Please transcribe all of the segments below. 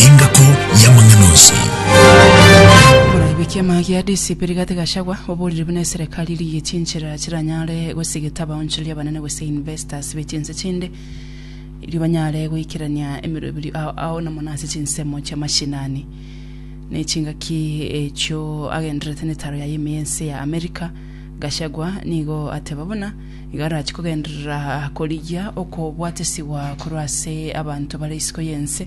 Engako y'amang'ana onsi. Moraigwe ekiama gia DCP Rigathi Gachagua oborire buna eserekari erigie chinchera chiranyare gosigeta abaonchori abanene gose investors be chinse chinde erio banyare goikerania emeroberio ao ao na mono ase chinsemo chia mashinani ne chingaki echio agendererete netaro yaye ime y'ense ya America Gachagua nigo ateba buna iga arachie kogenderera korigia okobwatesigwa korwa ase abanto bare isiko y'ense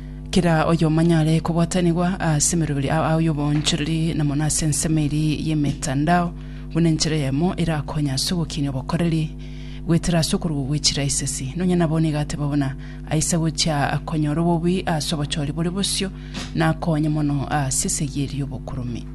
Kera oyomanyare kobwatanigwa ase emeroberi ao ao y'obonchoreri na mono ase ensemo eria y'emetandao, buna enchera eyemo erakonye ase ogokinia obokoreri goetera ase okorugwa gwe chiraisesi. Nonya nabo nigo ateba buna aise gochia konyora obobui ase obochori bore bosio na akonye mono ase esegi eria y'obokuromi.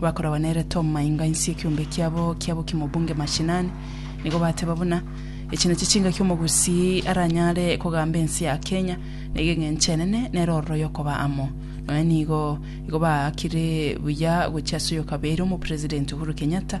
bakoragwa nere Tom mainga insi ekiombe kiabo kia bokima obunge mashinani, nigo bateba buna echi nachi chingaki omogusii aranyare kogamba ensi ya Kenya naiga eng'encho enene nere ororo yokoba amo nonya nigo igo baakire buya gochia ase oyokabeire omopresident Uhuru Kenyatta